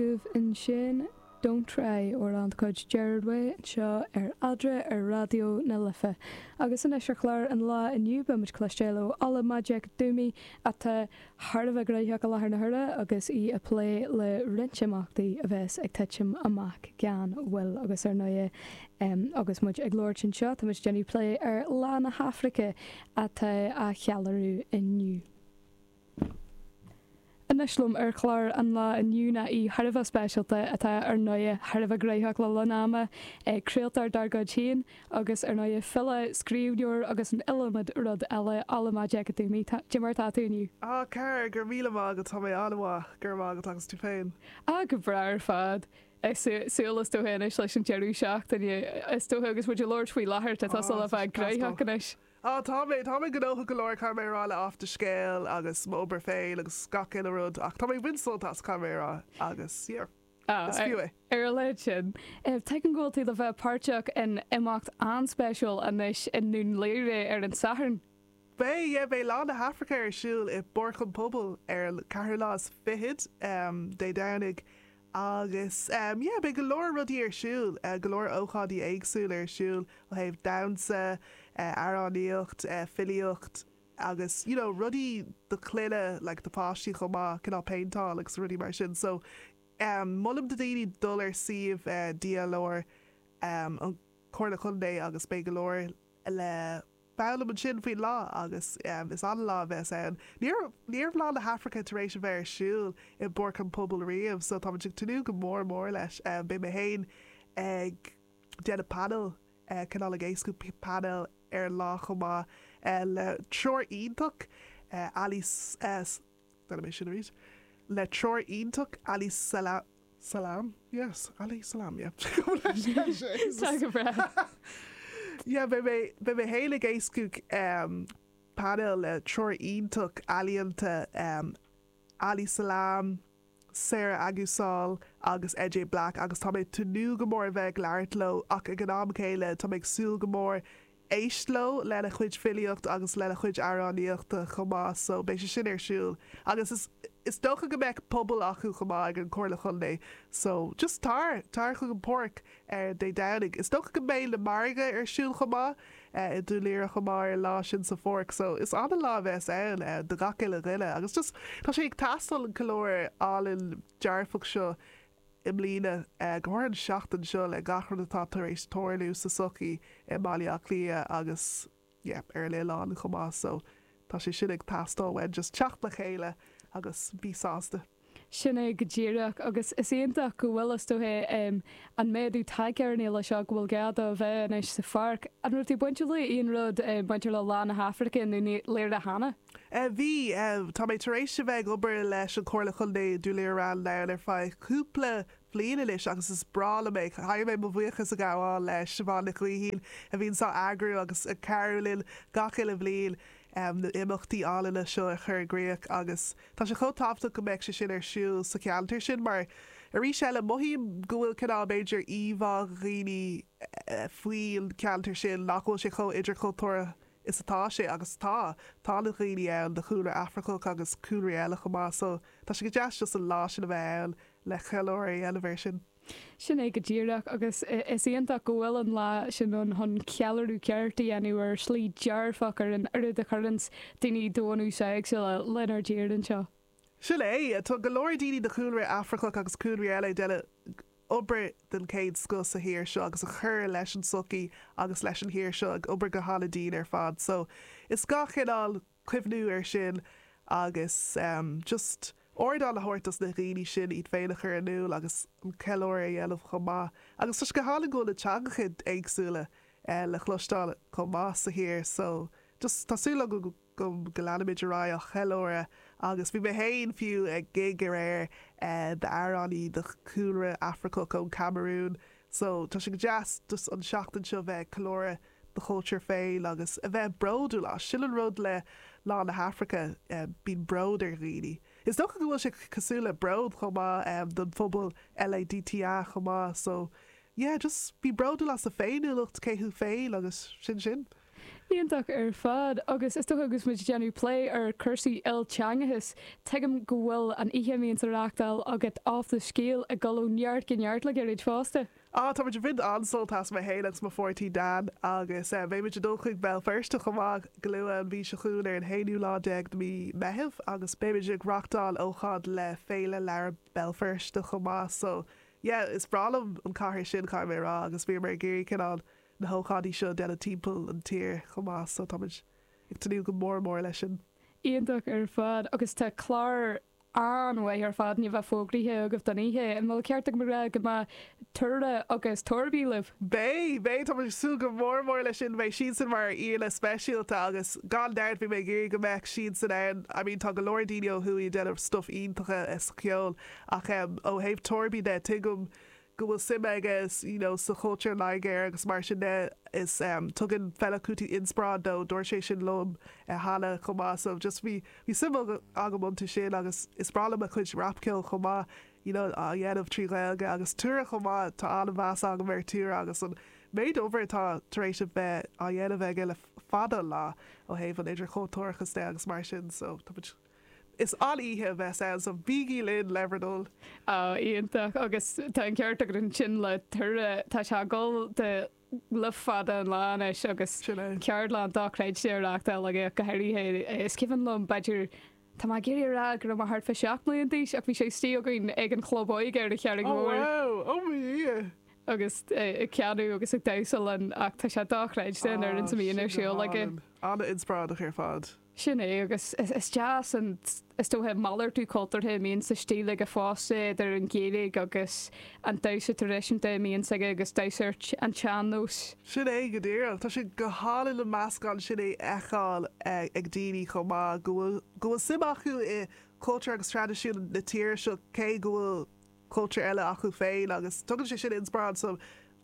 Daoibh ansin, Don't Try, amhrán de chuid Gerard Way anseo ar Eadra ar Raidió na Life. Agus anois ar chlár an lá inniu beidh muid ag cloisteáil ó Ola Majekodunmi atá thar a bheith gnóthach i láthair na huaire agus í ag plé le roinnt imeachtaí a bheas ag titim amach gan mhoill agus ar ndóigh agus muid ag labhairt anseo tá muid ag déanamh plé ar Lá na hAfraice atá á cheiliúradh inniu. Anois liom ar chlár an lá inniu ná aoi thar a bheith speisialta atá ar ndóigh thar a bheith gnóthach le linn an ama seo, craoltóir dár gcuid féin agus ar ndóigh file, scríbhneoir agus an iliomad rud eile Ola Majekodunmi, cad é mar atá tú inniu. A chara, go raibh míle maith agat, tá mé an-mhaith, go raibh maith agat agus tú féin. Ah go breá ar fad, súil is dócha anois leis an deireadh seachtaine is dócha agus muid ag labhairt faoi láthair tá tusa le bheith gnóthach anois. Á, tá mé, tá mé gnóthach go leor, caithfidh mé a rá, le Áit an Scéil agus m'obair féin agus gach uile rud ach tá mé ag baint sult as, caithfidh mé a rá agus, yeah, Á, is fiú é. ar a laghad sin, tuigim go bhfuil tú le bheith páirteach in imeacht an-spéisiúil anois i nDún Laoghaire ar an Satharn. Beidh, yeah, beidh Lá na hAfraice ar siúl i bPáirc an Phobail ar an ceathrú lá is fichead, em, Dé Domhnaigh Agus yeah, beidh go leor rudaí ar siúl, go leor ócáidí éagsúla ar siúl ó thaobh damhsa, amhránaíocht, filíocht agus you know rudaí do clainne like do pháistí chomh maith, cineál péinteáil agus rudaí mar sin. So ehm molaim do daoine dul ar suíomh DLR, ehm an Chomhairle Chontae agus beidh go leor le. Foghlaim ansin faoin lá agus is an-lá a bheas ann. Ní raibh, ní raibh Lá na hAfraice tar éis a bheith ar siúl i bPáirc an Phobail riamh so táimid ag tnúth go mór mór leis. Beidh mé féin ag déanamh painéil, cineál ag éascú painéil ar an lá chomh maith le triúr iontach, Ali, Deinim é sin arís. Le triúr iontach Ali Sala, Salam? Yes, Ali Salam, yeah. Cuma leis cé is é. Tá go breá. Yeah, beidh mé, beidh mé fhéin ag éascú painéal le triúr iontach ealaíonta Ali Salam. Sarah Aguisal agus NJ Black agus tá mé ag tnúth go mór a bheith ag labhairt leo ach ag an am céanna tá mé ag súil go mór éist leo lena chuid filíocht agus lena chuid amhránaíochta chomh maith so beidh sé sin ar siúl agus is is dócha go mbeadh puball acu chomh maith ag an Comhairle Chontae so just tar! Tar chuig an páirc! ar Dé Domhnaigh. Is dócha go mbeidh na margaidh ar siúl chomh maith i nDún Laoghaire chomh maith ar an lá sin sa pháirc so is an-lá a bheas ann do gach uile dhuine agus just tá sé ag teastáil an ceiliúradh álainn dearfach seo i mbliana, go háirithe an seachtain seo le gach rud atá tar éis tarlú sa sochaí i mBaile Átha Cliath agus. yep, ar an oileán chomh maith so tá sé sin ag teastáil uainn, just teacht le chéile agus bí sásta. Sin é go díreach agus is iontach go bhfuil, is dócha, em, an méadú tagtha ar an fhéile seo, go bhfuil gá dó a bheith anois sa pháirc. An raibh tú bainteach le aon rud, em, bainteach le Lá na hAfraice nó Dún Laoghaire cheana? Eh, bhí, em, tá mé tar éis a bheith ag obair leis an Chomhairle Chontae, Dún Laoghaire Rathdown, ar feadh cúpla bhliain anois agus is breá liom é. Caithfidh mé mo bhuíochas a ghabháil le Siobhán Nic Gaoithín a bhíonns á eagrú agus ag cabhrú linn gach uile bhliain na himeachtaí álainne seo a chur i gcríoch agus tá sé chomh tábhachtach go mbeadh sé sin ar siúl sa cheantar sin mar arís eile mothaím go bhfuil cineál b'fhéidir íomhá ag daoine faoin cheantar sin nach bhfuil sé chomh idirchultúrtha Is atá sé, agus tá. Tá na daoine ann de chúlra Afracach agus cúlraí eile chomh maith so tá sé go deas just an lá sin a bheith ann le ceiliúradh a dhéanamh air sin. Sin é go díreach agus is iontach go bhfuil an lá sin ann chun ceiliúradh ceart a dhéanamh ar shlí dearfach ar an oiread a chuireanns daoine de bhunús éagsúla lenár dtír anseo. Sin é, tá go leor daoine de chúlra Afracach agus cúlraí eile ag déanamh obair den chéad scoth sa thír seo agus ag cur leis an tsochaí agus leis an thír seo, ag obair go han-dian ar fad. So, is gá cineál cuimhniú ar sin agus just ardán a thabhairt dos na dhaoine sin iad féin a chur in iúl agus an ceiliúradh a dhéanamh chomh maith. Agus tá sé go hálainn go bhfuil na teangacha éagsúla le chloisteáil chomh maith sa thír so just tá súil agam go go leanfaimid ar aghaidh á cheiliúradh agus bhí mé féin, fiú, ag gig aréir d'amhránaí de chúlra Afracach ón Camarún so tá sé go deas just an tseachtain seo bheith ag ceiliúradh do chultúr féin agus a bheith bródúil as, sin an rud le Lá na hAfraice, bíonn bród ar dhaoine. Is dócha go bhfuil sé cosúil le bród chomh maith don phobal LADTA chomh maith so yeah just bí bródúil as do féiniúlacht, cé thú féin agus sin sin. Iontach ar fad. Agus is dócha agus muid ag déanamh plé ar cúrsaí ilteangachais, tuigim go bhfuil an oíche a bhíonns á reáchtáil agat Off the Scéal ag dul ó neart go neart le gairid fosta. Á, táimid ag baint an-sult as, mé féin agus mo pháirtí Dean, agus beidh muid ag dul chuig Béal Feirste chomh maith go luath an mhí seo chugainn ar an haonú lá déag de mhí Meitheamh agus beidh muid ag reáchtáil ócáid le Féile Leabhar Bhéal Feirste chomh maith so yeah is breá liom an cathair sin, caithfidh mé a rá, agus bhíomar ag iarraidh cineál na hócáidí seo a dhéanamh timpeall an tír chomh maith so táimid ag tnúth go mór mór leis sin. Iontach ar fad agus tá clár an-mhaith ar fad i mo bharúil fógraithe agaibh don oíche, an bhfuil ceart agam a rá go mbeadh Tuara agus Torby libh? Beidh! Beidh! Táimid ag súil go mór mór leis sin, beidh siadsan mar aíonna speisialta agus gan dabht bhí mé ag iarraidh go mbeadh siadsan ann, I mean tá go leor daoine ó thuaidh ag déanamh stuff iontacha sa cheol ach em ó thaobh Torby de tuigim go bhfuil suim aige you know sa chultúr Nigéarach agus mar sin de is em tugann Fela Kuti inspioráid dó, dúirt sé sin liom eh cheana chomh maith so just bhí bhí suim agam iontu sin agus is breá liom a chuid rapcheoil chomh maith you know á dhéanamh trí Ghaeilge agus Tura chomh maith tá an-mheas agam ar Tura agus an méid oibre atá tar éis a bheith á dhéanamh aige le fada an lá ó thaobh an idirchultúrachais de agus mar sin so tá muid Is an-oíche a bheas ann so bígí linn le bhur dtoil! Á, iontach, agus tá an ceart agat ansin le Tura, tá sé ag dul dó le fada an lá anois agus Sin é. ceardlann dochreidte á reachtáil aige go háirithe, is cuimhin liom, b'fhéidir, tá mé ag iarraidh a rá go raibh mé thart fá seacht mbliana d'aois ach bhí sé istigh againn ag an chlub óige ar an Charraig Mhór wow, ó mo Dhia! agus é ag canadh agus ag damhsa linn ach tá sé dochreidte an oiread is a bhíonn ar siúl aige. An-inspioráideach ar fad. Sin é, agus is deas an, is dócha, malartú cultúrtha a bhíonn ar siúl aige fosta, idir an Ghaeilge agus an damhsa traidisiúnta a bhíonn aige agus damhsa ar an tsean-nós. Sin é go díreach. Tá sé go hálainn an meascán sin a fheiceáil ag daoine chomh maith, go bhfuil, go bhfuil suim acu i gcultúr agus traidisiún na tíre seo cé go bhfuil cultúr eile acu féin agus tugann sé sin inspior,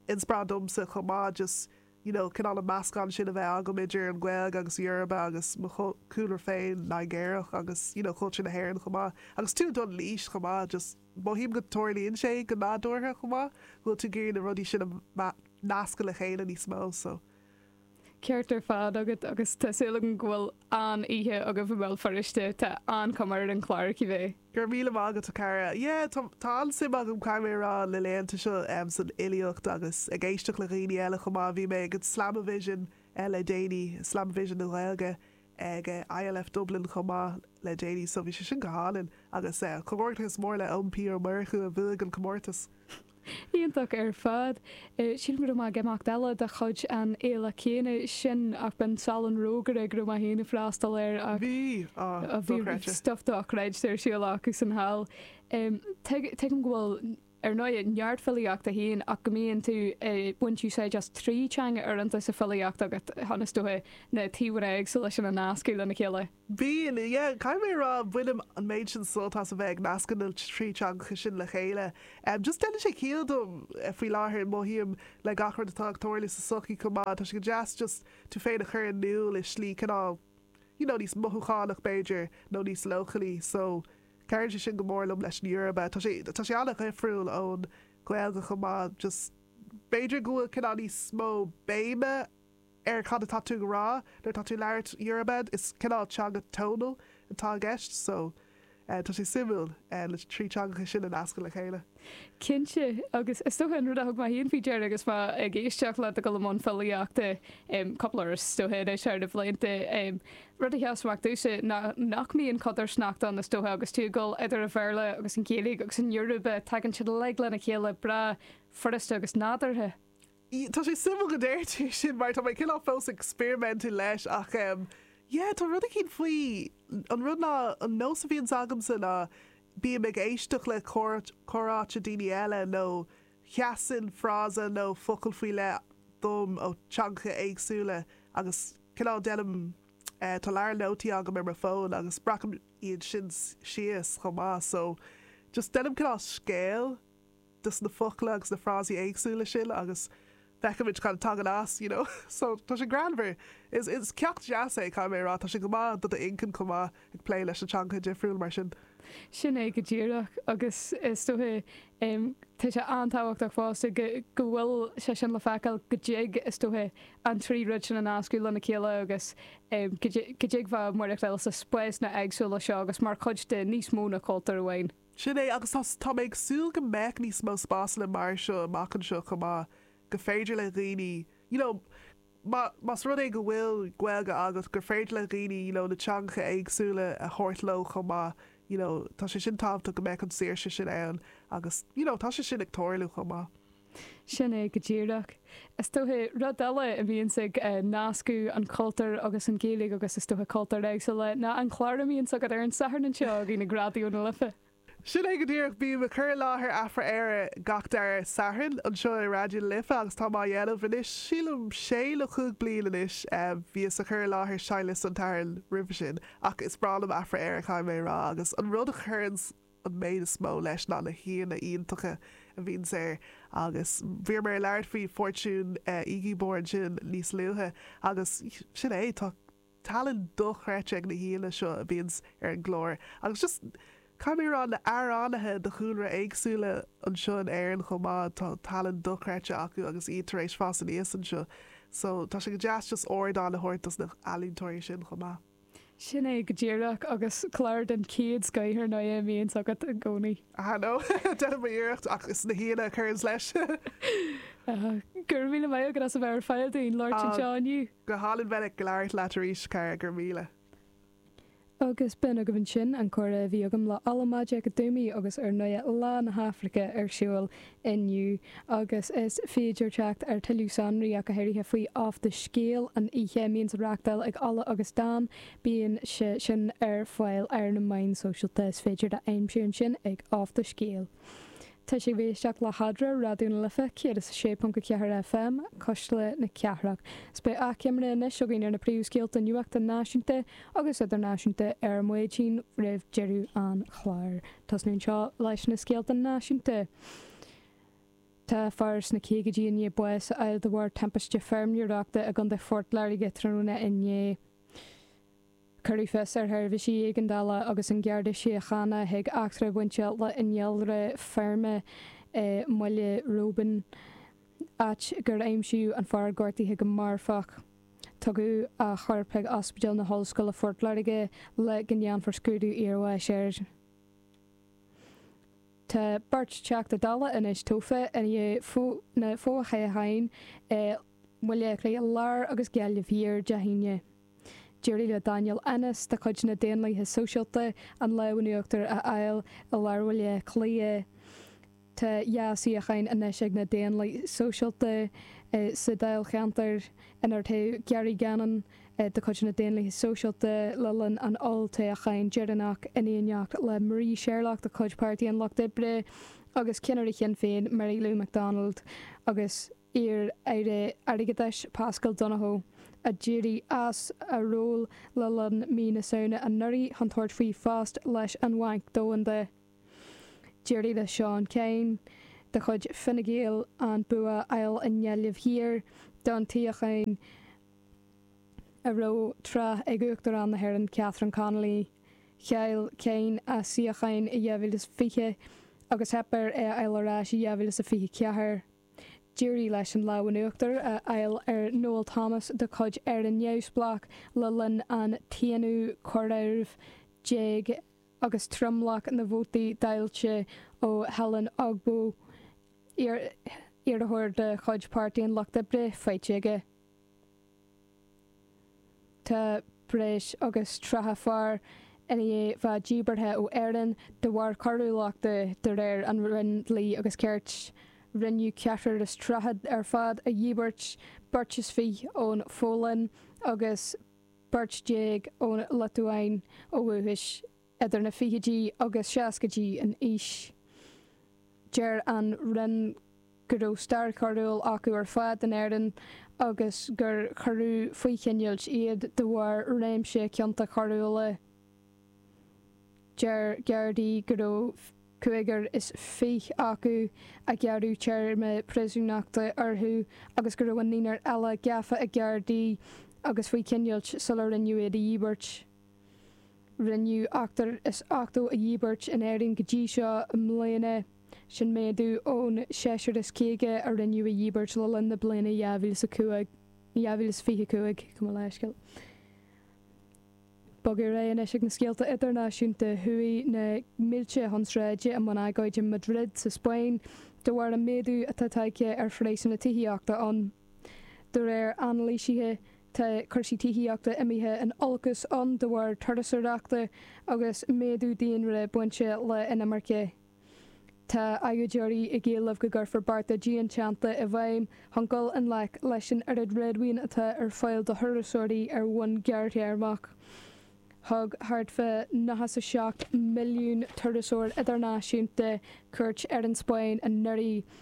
inspioráid domsa chomh maith just. you know cineál an meascán sin a bheith agam idir an Ghaeilge agus Yoruba agus mo chultúr féin Nigéarach agus you know cultúr na hÉireann chomh maith agus tú ag dul in aois chomh maith just mothaím go dtarlaíonn sé go nádúrtha chomh maith go bhfuil tú ag iarraidh na rudaí sin a nascadh le chéile níos mó so. Ceart ar fad agat agus tá súil agam go mbeidh an-oíche agaibh i mBéal Feirste, tá an-chuma ar an chlár, cibé. Go raibh míle maith agat a chara. Yeah, tá, tá an-suim agam, caithfidh mé a rá, na laethanta seo, em, san fhilíocht agus ag éisteacht le dhaoine eile chomh maith. Bhí mé ag an Slamavision, eh, le déanaí, Slamavision na Gaeilge ag, eh, ILF Dublin chomh maith le déanaí so bhí sé sin go hálainn agus, eh, comhghairdeachas mór le Eoin P. Ó Murchú a bhuaigh an comórtas. Iontach ar fad. Sílim go raibh mé ag imeacht eile de chuid an fhéile chéanna sin ach b'in Salon Rógaire go raibh mé féin ag freastal air ach Bhí! Á, bhí stuff dochreidte ar siúl acu ansin thall. Tuigim go bhfuil, ar ndóigh, neart filíochta agat féin ach go mbíonn tú ag baint úsáid as trí teanga uaireanta sa filíocht agat, is dócha, na taobhanna éagsúla sin a nascadh lena chéile. Bíonn, Yeah, caithfidh mé a rá, bainim an méid sin sult as a bheith ag nascadh na trí teangacha sin le chéile. Em, just déanann sé ciall dom faoi láthair, mothaím, le gach rud atá ag tarlú sa tsochaí chomh maith, tá sé go deas just tú féin a chur in iúl i slí cineál, you know, níos mothúchánach b'fhéidir, nó níos leochailí, so, cabhraíonn sé sin go mór liom leis an Yoruba. Tá sé, tá sé an-dhifriúil ón Ghaeilge chomh maith, just b'fhéidir go bhfuil cineál níos mó béime, ar cad atá tú ag rá nuair atá tú ag labhairt Yoruba, is cineál teanga tonal atá i gceist, so tá sé suimiúil na trí teangacha sin a nascadh le chéile. Cinnte, agus is dócha an rud a thug mé féin faoi deara agus mé ag éisteacht leat ag dul i mbun filíochta, cúpla uair is dócha anois thar na blianta, rud a sheas amach domhsa ná nach mbíonn codarsnacht ann is dócha agus tú ag dul idir an Bhéarla agus an Ghaeilge agus an Yoruba, tagann siad uilig lena chéile breá furasta agus nádúrtha. Tá sé suimiúil go ndeir tú é sin mar tá mé cineál fós ag experimentáil leis ach em yeah tá rud eicínt faoi, an rud ná an nós a bhíonns agamsa ná bím ag éisteacht le comhráite daoine eile nó sheasann frása nó focal faoi leith dom ó teangacha éagsúla agus cineál déanaim eh tá leabhar nótaí agam ar mo fón agus breacaim iad sin síos chomh maith so just déanaim cineál scéal dos na focla agus na frásaí éagsúla sin agus feicimid cad a tagann as, you know. So, tá sé greannmhar. Is, is ceacht deas é, caithfidh mé a rá. Tá sé go maith do do inchinn chomh maith, ag plé leis na teangacha difriúla mar sin. Sin é go díreach agus is dócha, em, tá sé an-tábhachtach fosta go, go bhfuil sé sin le feiceáil, go dtig, is dócha, an trí rud sin a nascadh lena chéile agus, em, go dtig, go dtig bheith i do mhaireachtáil sna spásanna éagsúla seo agus mar chuid de níos mó ná cultúr amháin. Sin é, agus tá, tá mé ag súil go mbeidh níos mó spásanna mar seo amach anseo chomh maith, go féidir le dhaoine, you know, má, más rud é go bhfuil Gaeilge agat, gur féidir le dhaoine, you know, na teangacha éagsúla a thabhairt leo chomh maith, you know, tá sé sin tábhachtach go mbeadh an saoirse sin ann agus, you know, tá sé sin ag tarlú chomh maith. Sin é go díreach. Is dócha, rud eile a bhíonns ag nascadh an chultúir agus an Ghaeilge agus is dócha cultúir éagsúla, ná an clár a mbíonns agat ar an Satharn anseo againn ag Raidió na Life. Sin é go díreach, bím ag cur i láthair Afra-Éire gach dara Satharn anseo ar Raidió na Life agus táim á dhéanamh anois, sílim, sé nó chúig bliain anois, bhíos ag cur i láthair Seinnliosta an tSathairn roimhe sin, ach is breá liom Afra-Éire, caithfidh mé a rá, agus an rud a chuireanns an méid is mó leis ná na haíonna iontacha a bhíonns air agus bhí mé ag labhairt faoi Fortune Igiebor ansin níos luaithe agus sin é, tá tallann dochreidte ag na haíonna seo a bhíonns ar an gclár agus just, caithfidh mé a rá, na amhránaithe de chúlra éagsúla anseo in Éirinn chomh maith, tá tallann dochreidte acu agus iad tar éis fás aníos anseo so tá sé go deas just ardán a thabhairt dos na h-ealaíontóirí sin chomh maith. Sin é go díreach agus clár den chéad scoith ar ndóigh a bhíonns agat i gcónaí. Aha, no, déanaim mo iarracht ach is na haíonna a chuireanns leis. Aha. Gura míle maith agat as a bheith ar fáil dúinn le labhairt anseo inniu. Go hálainn bheith ag labhairt leat arís, cara, go raibh míle. Agus b'in agaibh ansin an comhrá a bhí agam le Ola Majekodunmi agus ar ndóigh lá na hAfraice ar siúl inniu agus is féidir teacht ar thuilleadh sonraí ach go háirithe faoi Off the Scale an oíche a bhíonn á reachtáil ag Ola agus Dan. Bíonn sin ar fáil ar na meáin sóisialta. Is féidir do iad a aimsiú ansin ag Off the Scale. Tá sibh ag éisteacht le Adhmhaidin Raidió na Life 106.4 FM cuisle na cathrach. Is beidh athchoimre anois againn ar na príomhscéalta nuachta náisiúnta agus idirnáisiúnta ar maidin roimh deireadh an chláir. Ag tosú anseo leis na scéalta náisiúnta. Tá fear sna caogaidí i ndiaidh bás a fháil de bharr timpiste feirmeoireachta i gContae Phort Láirge tráthnóna inné. Cuireadh fios ar sheirbhísí éigeandála agus an Garda Síochána chuig eachtra a bhain le hinnealra feirme i mBaile Roibín, áit gur aimsíodh an fear gortaithe go marfach. Tugadh a chorp chuig Ospidéal na hOllscoile Phort Láirge le go ndéanfar scrúdú iarbháis air. Tá beirt Teachta Dála anois tofa i ndiaidh na fothoghcháin i mBaile Átha Cliath Láir agus Gaillimh Thiar Dé hAoine. D'éirigh le Daniel Ennis de chuid na Daonlaithe Sóisialta an lámh in uachtar a fháil i lár Bhaile Átha Cliath Tá dhá shuíochán anois ag na Daonlathaithe Sóisialta sa dáilcheantar inar toghadh Gary Gannon de chuid na Daonlathaithe Sóisialta le linn an olltoghcháin deireanach, in éineacht le Marie Sherlock de chuid Pháirtí an Lucht Oibre agus ceannaire Shinn Féin Mary Lou McDonald agus iar-aire airgeadais Paschal Donohoe, a d'éirigh as a ról le linn mhí na Samhna anuraidh chun tabhairt faoi phost leis an Bhanc Domhanda. D'éirigh le Seán Kyne de chuid Fine Gael an bua a fháil i nGaillimh Thiar don tsuíochán a raibh tráth ag Uachtarán na hÉireann Catherine Connolly. Chaill Kyne a shuíochán i 2020 agus theip air é a fháil ar ais i 2024. D'éirigh leis an lámh in uachtar a fháil ar Noel Thomas de chuid Éire Neamhspleách le linn an t-aonú comhaireamh déag agus tromlach na vótaí dáilte ó Helen Ogbu, iarrthóir de chuid Pháirtí an Lucht Oibre, faighte aige. Tá breis agus 30 fear i ndiaidh a bheith díbeartha ó Éirinn de bharr coiriúlachta, de réir an Roinn Dlí agus Cirt. Rinneadh ceathrar is tríocha ar fad a dhíbirt, beirt is fiche ón Pholainn agus. beirt déag ón Liotuáin ó dhúchas, idir na fichidí agus seascaidí in aois. Deir an Roinn go raibh stair choiriúil acu ar fad in Éirinn agus gur cuireadh faoi choinneáil iad de bharr réimse cionta coiriúla. Deir Gardaí go raibh cúigear is fiche acu a gearradh téarma príosúnachta orthu agus go raibh an naonar eile gafa ag Gardaí agus faoi choinneáil sular rinneadh iad a dhíbirt. Rinneadh ochtar is ochtó a dhíbirt in Éirinn go dtí seo i mbliana, sin méadú ón seisear is caoga a rinneadh a dhíbirt le linn na bliana 2025. Bog ar aghaidh anois ag na scéalta idirnáisiúnta. Chuaigh na mílte chun sráide i mbun agóide i Madrid sa Spáinn de bharr an méadú atá tagtha ar phraghsanna tithíochta ann. De réir anailísithe, tá cúrsaí tithíochta imithe in olcas ann de bharr turasóireachta agus méadú daonra bainte le inimirce. Tá agóideoirí ag éileamh go gcuirfear bearta dianteannta i bhfeidhm chun dul i ngleic leis an oiread réadmhaoin atá ar fáil do thurasóirí ar bhonn gearrthéarmach. Thug thart fá 97 milliún turasóir idirnáisiúnta cuairt ar an Spáinn anuraidh,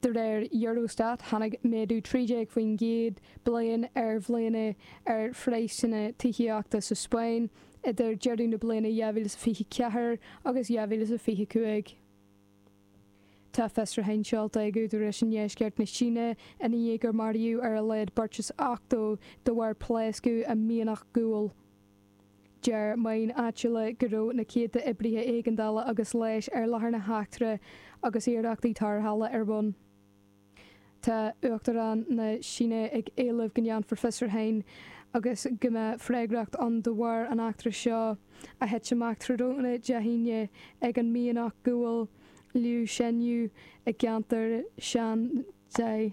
De réir Eurostat, tháinig méadú 13% bliain ar bhliana ar phraghsanna tithíochta sa Spáinn idir deireadh na bliana 2024 agus 2025. Tá fiosraithe á seoladh ag údaráis i ndeisceart na Síne i ndiaidh gur maraíodh ar a laghad beirt is 80 de bharr pléascadh i mianach guail. Deir meáin áitiúla go raibh na céadta oibrithe éigeandála agus leighis ar láthair na heachtra agus iarrachtaí tarrthála ar bun. Tá Uachtarán na Síne ag éileamh go ndéanfar fiosrúchán agus go mbeadh freagracht ann de bharr an eachtra seo a thit amach tráthnóna Dé hAoine ag an mianach guail Liushenyu i gceantar Shanxi.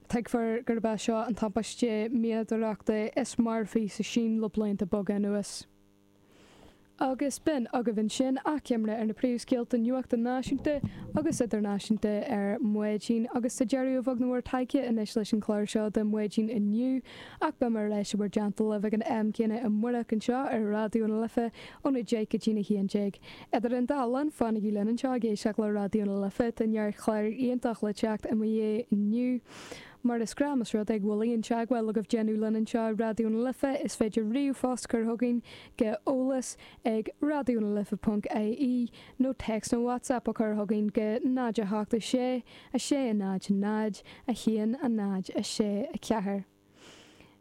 Tuigtear gurb é seo an timpiste mianadóireachta is marfaí sa tSín le blianta beaga anuas. Agus b'in agaibh ansin achoimre ar na príomhscéalta nuachta náisiúnta agus idirnáisiúnta ar Mhaidin agus is ag deireadh an bhóthair atá muid anois leis an chlár seo de Mhaidin inniu ach beimid ar ais i bhur dteannta lena thuilleadh ag an am céanna amárach anseo ar Raidió na Life óna deich go dtí a haon déag. Idir an dá linn, fanaigí linn anseo ag éisteacht le Raidió na Life, tá neart clár iontach le teacht i mo dhiaidh inniu. Mar is gnáth más rud é go bhfuil aon teagmháil agaibh déanamh linn anseo i Raidió na Life, is féidir ríomhphost a chur chugainn go eolas ag radionalife.ie nó text nó WhatsApp a chur chugainn go 087 660 0 1 0 6 4.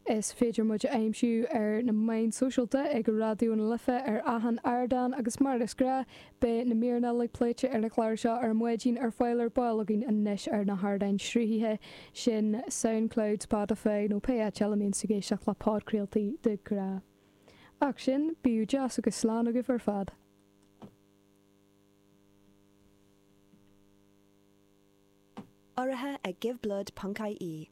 Is féidir muid a aimsiú ar na meáin sóisialta, ag Raidió na Life ar achan ardán agus mar is gnách, beidh na míreanna uilig pléite ar an chlár seo ar maidin ar fáil ar ball againn anois ar na hardáin sruthaithe sin, Soundcloud, Spotify nó pé áit eile a mbíonn tú ag éisteacht le podchraoltaí de ghnáth. Ach sin, bíodh deas agus slán agaibh ar fad! Urraithe ag Give Blood ponc-IE.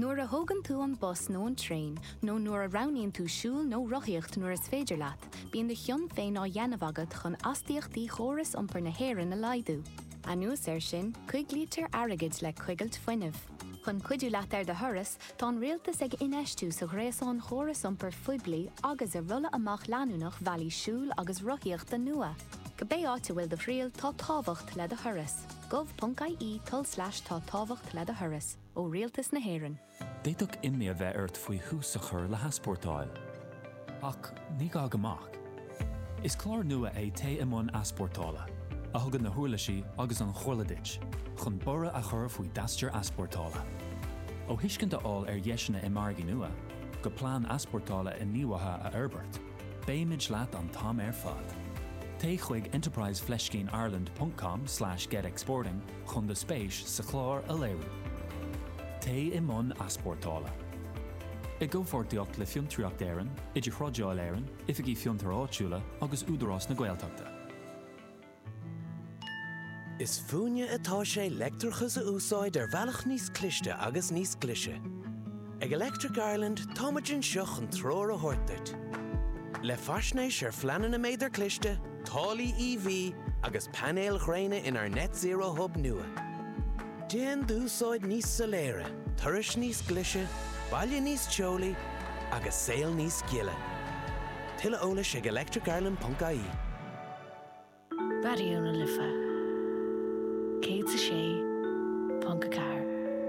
Nuair a thógann tú an bus nó an traein, nó nuair a roghnaíonn tú siúl nó rothaíocht nuair is féidir leat, bíonn do chion féin á dhéanamh agat chun astaíochtaí chóras iompair na hÉireann a laghdú. Anuas air sin, coiglítear airgead le coigilt fuinnimh. Chun cuidiú leat ar do thuras, tá an rialtas ag infheistiú sa ghréasán chóras iompair phoiblí agus i rolladh amach leanúnach bhealaí siúil agus rothaíochta nua. Cibé áit a bhfuil do thriall, tá tábhacht le do thuras. gov.ie tulslais tá tábhacht le do thuras. ó Rialtas na hÉireann. D'fhéadfadh imní a bheith ort faoi thús a chur le heaspórtáil. Ach ní gá go mbeadh. Is clár nua é Téigh i mBun Easpórtála, a thugann na huirlisí agus an chomhairle duit chun borradh a chur faoi d'aistear easpórtála. Ó thuiscint a fháil ar dheiseanna i margaí nua, go plean easpórtála inghníomhaithe a fhorbairt, beimid leat an t-am ar fad. Téigh chuig enterprise fleiscín ireland.com/getexporting chun do spéis sa chlár a léiriú. Téigh i mbun easpórtála. I gcomhpháirtíocht le Fiontraíocht Éireann, Idir-Thrádáil Éireann, Oifigí Fiontair Áitiúla agus Údarás na Gaeltachta. Is fúinne atá sé leictreachas a úsáid ar bhealach níos cliste agus níos glaise. Ag Electric Ireland táimid anseo chun treoir a thabhairt duit. Le faisnéis ar phleananna méadar cliste, taraifí EV agus painéil ghréine inár Net Zero Hub nua. Déan d'úsáid níos soiléire, turais níos glaise, baile níos teolaí agus saol níos gile. Tuilleadh eolais ag electricireland.ie. Raidió na Life 106.4.